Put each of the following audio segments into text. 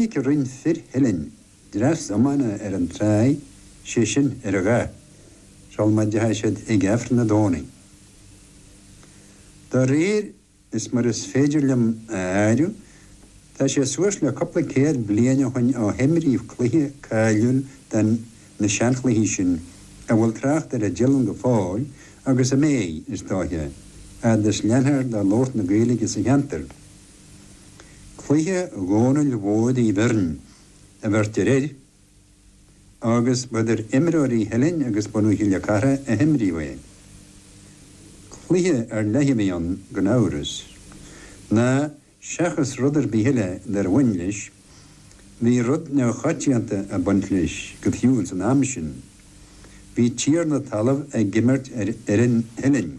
Tháinic roinnt fir Theilinn dreas iomána ar an tráigh, sé sin ar an Gháth, sul má dtéadh siad ag Aifreann na Domhnaigh. Do réir is mar is féidir liom a áiriú tá sé suas le cupla céad bliain ó shoin ó himríodh cluiche cáiliúil de na seanchluichí sin a bhfuil trácht air i dTeileann go fóill agus a mbéidh, is dóiche, a fhad is leanfar de labhairt na Gaedhilge sa cheantar. Cluiche Dhónaill Mhóir Uí Bheirn a bheirtear air agus ba idir imreoirí Theilinn agus bunadh Chille Cartha a himríodh é. Cluiche ar leith a bhí ann gan amhras, ná seachas rud ar bith eile dár bhain leis, bhí rud neamhchoitianta ag baint leis go fiú ins an am sin. Bhí an tiarna talaimh ag imirt ar fhoireann Theilinn.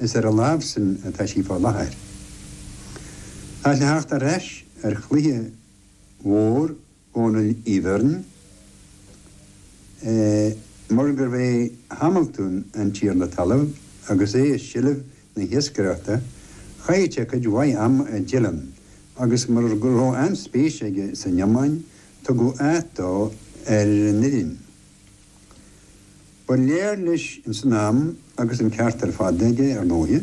Is ar a láimh sin atá sí fá láthair. Ach le theacht ar ais ar chluiche mhór Dhónaill Uí Bheirn, mar gurbh é Hamaltún an tiarna talaimh agus é i seilbh na hiascaireachta, chaill sé cuid mhaith ama i dTeileann agus mar go raibh an-spéis aige san iomáin, tugadh áit dó ar an fhoireann. Ba léir leis ins an am, agus an ceart ar fad aige, ar ndóighe,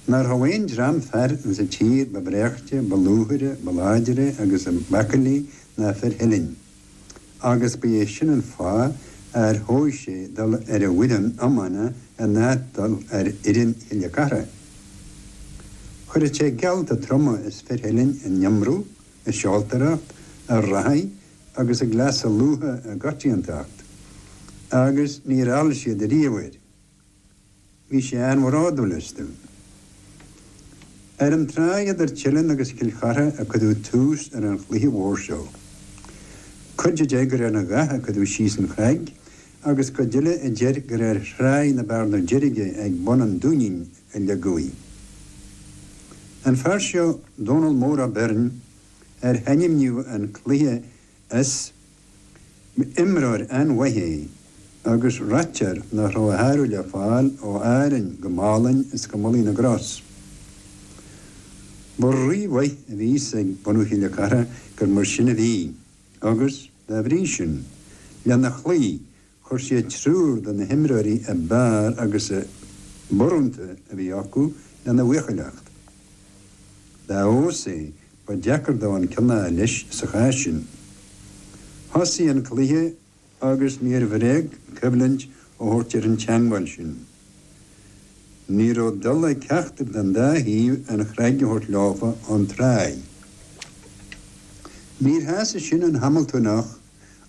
nach rabh aon dream fear ins a' tír ba bhreáichte, ba lúthaire, ba láidire agus b'aicillí ná fir Theilinn, agus ba é sin an fáth ar thogh sé dul ar an bhfoireann iomána in áit dul ar fhoireann Chille Cartha. Chuireadh sé geallta troma as fir Theilinn in iomramh, i seoltóireacht, ag reathaidh agus i gcleasa lútha i gcoitiantacht, agus níor fheall siad ariamh air. Bhí sé an-bhródúil astu. Ar an tráigh idir Teileann agus Cill Chartha a cuireadh tús ar an chluiche mhór seo. Cuid a deir gur ar an Gháth a cuireadh síos an chrag agus cuid eile a deir gur ar thráigh na Bearna Deirge ag bun an Dúinín a ligeadh í. An fear seo, Dónal Mór Ó Beirn, ar hainmníodh an cluiche as, imreoir an-mhaith é agus ráitear nach raibh a shárú le fáil ó Árainn go Málainn go Malaidh na gCros. Ba rí-mhaith a bhí a fhios ag bunadh Chille Cartha gur mar sin a bhí agus, dá bhrí sin, lena chloí Chuir siad triúr de na himreoirí ab fhearr agus ab urrúnta a bhí acu lena bhuachailleacht. Dá fheabhas é, ba deacair dó an ceann a fháil leis sa chás sin. Thosaigh an cluiche agus níor bhréag coimhlint a thabhairt ar an teangmháil sin. Ní raibh dul ag ceachtar den dá thaobh an chnag a thabhairt leofa ón tráigh. Níor shásaigh sin an Hamaltúnach.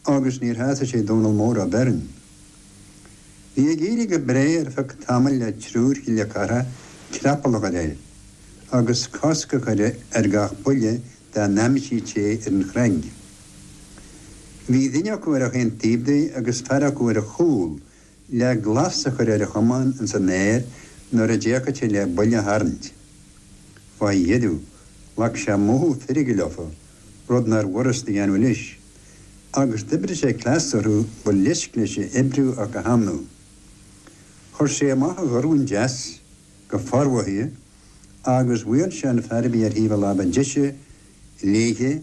agus níor shásaigh sé Dónal Mór Ó Beirn. Bhí ag éirí go bréagh ar feadh tamaill le triúr Chille Cartha creapall a chur air, agus cosc a chur ar gach buille dá n-aimsíodh sé ar an chnaig. Bhí duine acu ar achan taobh de agus fear acu ar a chúl le glas a chur ar a chamán ins an aer nuair a d'fhéachfadh sé le buille a tharraingt. Faoi dheireadh, ghlac sé mothú feirge leofa, rud nárbh fhurast a dhéanamh leis. Agus d'oibrigh sé cleas orthu ba leisc leis a oibriú ach a shamhlú. Chuir sé amach a dhorn deas, go formhothaithe, agus bhuail sé an fear a bhí ar thaobh a láimhe deise léithe,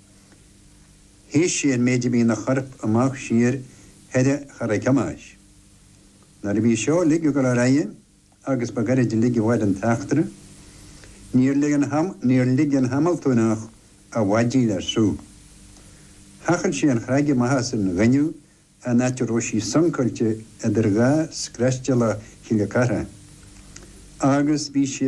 Shuidh sí an méid a bhí in a chorp amach siar thoir a Charaig Thomáis. Nuair a bhí seo ligthe go lár aige agus ba ghairid uilig a mhair an t-eachtra. Níor lig an, níor lig an Hamiltúineach a mhaidí le sruth. Thochail sé an chnag amach as an gaineamh an áit a raibh sí suncáilte idir dhá scraiste eile Chille Cartha agus bhí sí